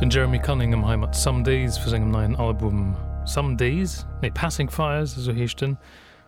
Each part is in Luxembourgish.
Den Jeremy Cunningham hei mat Some Days vu sengem neien Album Some Days, nee Passing Fires, esou heescht en.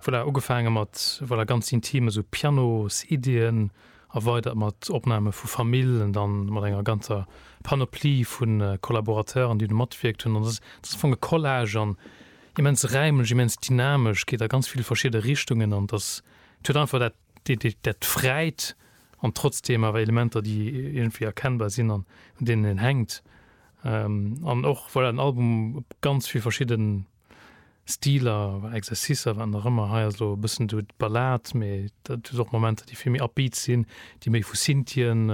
Voilà, ugefaange mat, voilà, ganz intim, esou Pianos-Iddien, erweidert mat Opname vu Famill an dann mat enger ganzer Panoplie vu Collaborateuren, déi do matwierkt hunn. An dat ass am Fong e Collage an immens räimlech, immens dynamesch, geet a ganz vill verschidde Richtungen an et ass, et huet einfach dat, dat fräit an trotzdem awer Elementer déi iergendwéi erkennbar sinn an un deenen een hänkt an och voilà den Album op ganz vill verschidde Stiler, Exercicer, wat nach ëmmer. Hei ass elo e bëssen do d'Ballad, mee dat huet och Momenter déi vill méi upbeat sinn, déi méi vu Synthien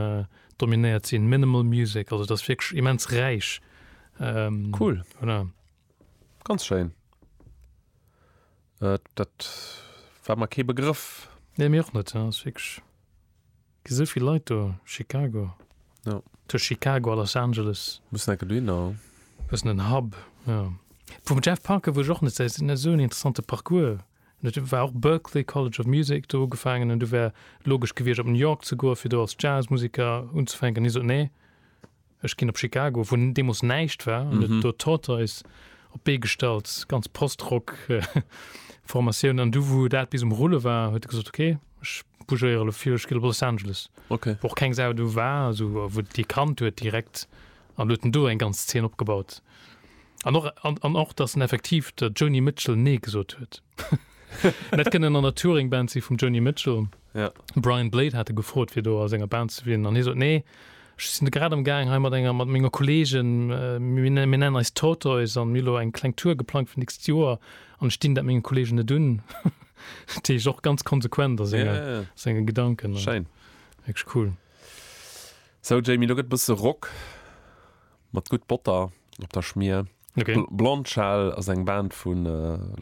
dominéiert sinn, minimal music, also et ass wierklech immens räich. Cool, ganz schéin. Äh, dat war mer kee Begrëff. Nee, mir och net. Ja, ass wierklech. Gi sou vill Leit do. Chicago. Ja. Tëscht Chicago a Los Angeles. Mussen enke dohinner, ja. Bëssen en Hub, ja. Vum Jeff Parker wuess ech och net säis. En huet esou en interessante Parcours. En huet, war och Berklee College of Music, do ugefaangen. An du wär logesch gewiescht, op New York ze goen, fir do als Jazzmusiker unzefänken. Hie sot, Nee. Ech ginn op Chicago, wou deemools näischt war, an et do Tortoise op d'Bee gestallt, ganz Post-Rock-Formatioun. An du, wou dat bis um Rulle war, huet e gesot, Okay, ech bougéiere lo vill, ech ginn op Los Angeles, wou och keng Sau do war, esou, a wou dee kannt huet direkt, an huet en do eng ganz Zeen opgebaut. An och, an och, datt en effektiv der Joni Mitchell Nee gesot huet. Dat kënnt en an der Touring Band si vum Joni Mitchell. Ja. De Brian Blade hat e gefrot fir do a senger Band ze wielen an hie sot, Nee, ech sinn grad am Gaang hei mat enger mat menger Kolleegen, mir nennen eis Tortoise an mir hu lo eng kleng Tour geplangt fir d'nächst Joer an ech dinn dat menge Kolleegen net un. Dat heescht och ganz konsequent a senge, senge Gedanken an. Schéin. Wierklech cool. Sou Jamie, lo gëtt e bësse Rock. Mat gutt Botter op der Schmier. Blond Shell ass eng Band vu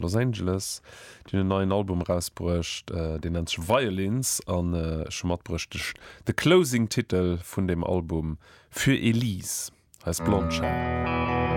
Los Angeles. Déi hunn en neien Album erausbruecht, deen nennt sech Violins an ech hu matbruecht de Closing Titel vun deem Album, Für Elise heist Blond Shell.